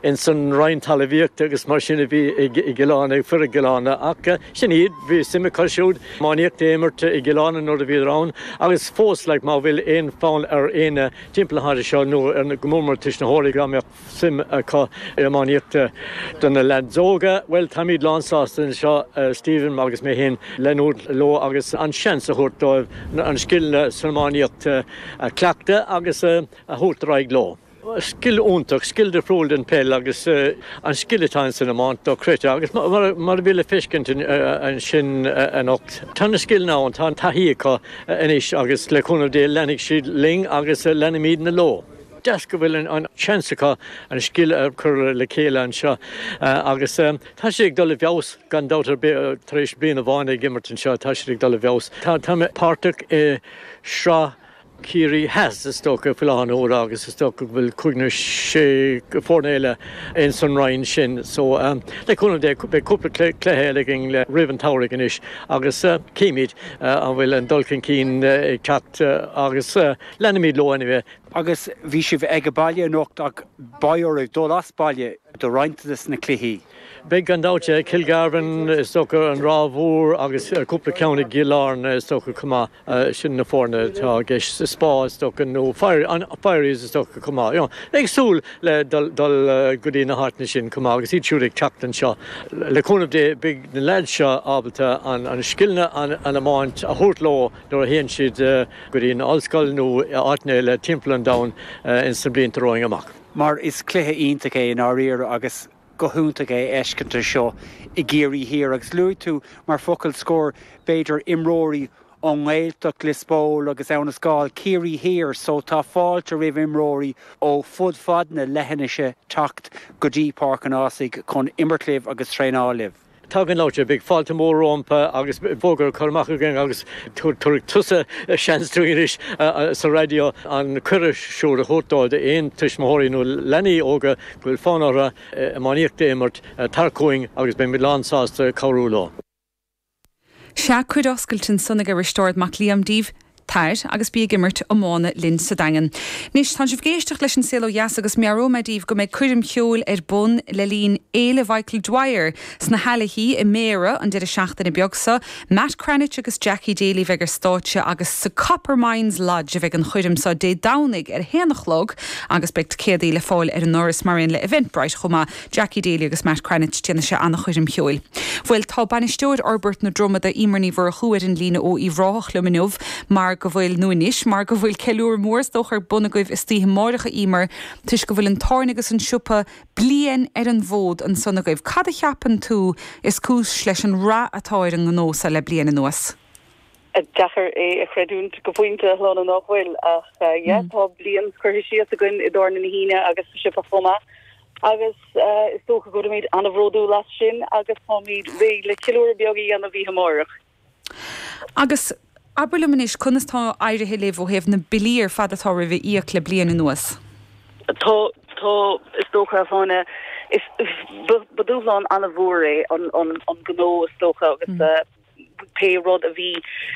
ins an Roinn Talmhaíochta agus mar sin a bhí i gCill Áirne ag fir i gCill Áirne ach sin iad, bhí suim acu siúd iománaíocht a imirt i gCill Áirne nuair a bhíodar ann agus fós like má bhfuil aon fonn ar éinne timpeall na háite seo nó go mór mór tuismitheoirí dá mbeadh suim acu in iománaíocht do na leaids óga bhuel táimíd lán sásta anseo Stephen agus mé féin leanúint leo agus an seans a thabhairt dóibh an scileanna san iománaíocht a chleachtadh agus a thabhairt ar aghaidh leo. Scil iontach, scil difriúil den peil agus an scil atá in san iomáint dochreidte agus mar a bhí le feiscint ansin anocht tá na scileanna ann, tá an taithí acu anois agus le cúnamh Dé leanfaidh siad linn agus leanfaimidne leo. Deas go bhfuil an seans acu an scil a chur le chéile anseo agus tá siad ag dul i bhfeabhas gan dabht ar bith tar éis bliain amháin ag imirt anseo tá siad ag dul i bhfeabhas. Tá mé páirteach i sraith Ciarraí Theas. Is dócha, faoi láthair na huaire agus is dócha go bhfuil cúig nó sé foirne eile ins an roinn sin so le cúnamh Dé beidh cúpla cluiche eile againn roimh an tsamhraidh anois agus cífimid an bhfuil an dul chun cinn ag teacht agus leanfaimid leo anyway. Agus bhí sibh aige baile anocht ach beidh oraibh dul as baile do roinnt de na cluichí. Beidh gan dabht yeah, Kilgarvan is dócha, an Ráth Mhór agus cúpla ceann i gCill Airne is dócha chomh maith. Sin na foirne atá i gceist Spa is dócha, nó Firies is dócha chomh maith. Ag súil le dul go dtí na háiteanna sin chomh maith agus iad siúd ag teacht anseo. Le cúnamh Dé beidh na leaids seo ábalta an scileanna agus an iomáint a thabhairt leo nuair a théann siad go dtí na ollscoil nó áiteanna eile timpeall an domhain ins na blianta romhainn amach. Mar is cluiche iontach é i ndáiríre agus. go hiontach é fheiscint seo i gCiarraí Thiar agus luaigh tú mar focal scor b'fhéidir imreoirí ón nGaeltacht, Lios Póil agus Abhainn an Scáil, Ciarraí Thiar so tá fáilte roimh imreoirí ó fud fad na leithinise teacht go dtí Páirc an Ásaigh chun imirt libh agus traenáil libh. Tá gan dabht beidh fáilte mhór rompu agus fógra curtha amach againn agus tabharfaidh tusa seans dúinn anois sa raidió an cuireadh siúd a thabhairt dóibh, d'aon tuismitheoirí nó leanaí óga go bhfuil fonn orthu iománaíocht a imirt, tar chugainn agus beimid lán sásta cabhrú leo. Sea, cuireadh oscailte ansan ag Risteárd Mac Liaim daoibh. Tair agus bí ag imirt iomána linn sa Daingean. Anois, tánn sibh ag éisteacht leis An Saol Ó Dheas agus meabhróidh mé daoibh go mbeidh coirm cheoil ar bun le linn Fhéile Mhichael Dwyer sna hAilichí i mBéarra an deireadh seachtaine beag so. Matt Cranitch agus Jackie Daly a bheidh ar stáitse agus sa Copper Mines Lodge a bheidh an choirm so Dé Domhnaigh ar a haon a chlog agus beidh ticeadaí le fáil ar an ndoras mar aon le Eventbrite chomh maith. Jackie Daly agus Matt Cranitch déanfaidh sé an-choirm cheoil. Bhuel, tá bainisteoir fhorbairt na Dromoda, Emer Ní Mhurchú, ar an líne ó Uíbh Ráthach liom inniu mar go bhfuil, nó anois, mar go bhfuil ceiliúradh mór is dócha ar bun agaibh istoíche amáireach, a Emer, toisc go bhfuil an tábhairne agus an siopa bliain ar an bhfód ansan agaibh. Cad a cheapann tú is cúis leis an rath atá ar an ngnó so le bliain anuas? Deacair é a chreidiúint go pointe, a Shláine, nach bhfuil? Ach, yeah, tá bliain curtha isteach againn i dtábhairne na hUíne agus sa siopa chomh maith. agus is dócha go bhfuilimid an-bhródúil as sin agus táimid réidh le ceiliúradh beag a dhéanamh oíche amárach. Agus abair liom anois, conas tá éirithe libh ó thaobh na billí ar fad atá romhaibh a íoc le bliain anuas? Tá, tá, is dócha, a Shláine. Is, ba dúshlán an-mhór é an, an, an gnó is dócha agus pé rud a bhí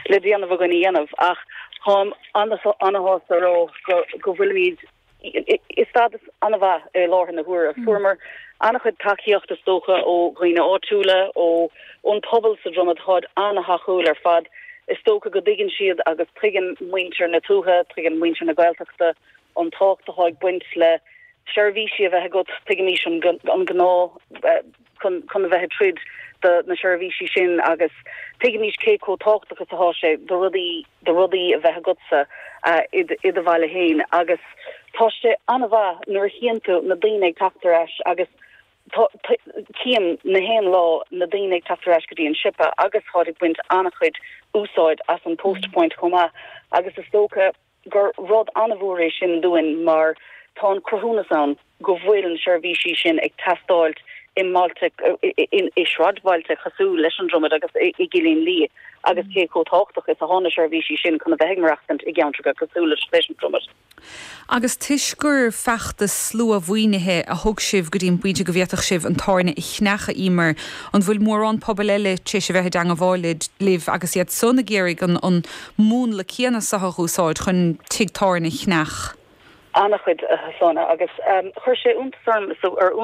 le déanamh againn a dhéanamh ach táim ana-shásta a rá go, go bhfuilimid, i stádas ana mhaith i láthair na huaire. Fuaireamar ana chuid tacaíocht is dócha ó dhaoine áitiúla, ó ón pobal sa Dromaid. Táid ana thacúil ar fad. Is dócha go dtuigeann siad agus tuigeann muintir na tuaithe, tuigeann muintir na Gaeltachta an tábhacht atá ag baint le seirbhísí a bheith agat. Tuigimís an gá chun a bheith ag troid do na seirbhísí sin agus tuigimís cé chomh tábhachtach is atá sé do rudaí do rudaí a bheith agatsa i do bhaile féin agus tá sé an-mhaith nuair a chíonn tú na daoine ag teacht ar ais agus cím na haon lá na daoine ag teacht ar ais go dtí an siopa agus táid ag baint an-chuid úsáid as an post point chomh maith agus is dócha gur rud an-mhór é sin dúinn mar tá an cruthúnas ann go bhfuil na seirbhísí sin ag teastáilt i mbailte, i sráidbhailte cosúil leis an Dromaid agus i gCillín Liath agus cé chomh tábhachtach is atá na seirbhísí sin chun a bheith ag maireachtaint i gceantracha cosúil leis an Dromaid. Agus toisc gur feachtas sluamhaoinithe a thug sibh go dtí an bpointe go bhféadfadh sibh an tábhairne a cheannach, Emer, an bhfuil mórán pobail eile tar éis a bheith i dteangmháil libh agus iadsan ag iarraidh an múnla céanna seo a dh'úsáid chun tigh tábhairne a cheannach? Ana-chuid, a Shláine, agus chuir sé iontas orm is ar Úna.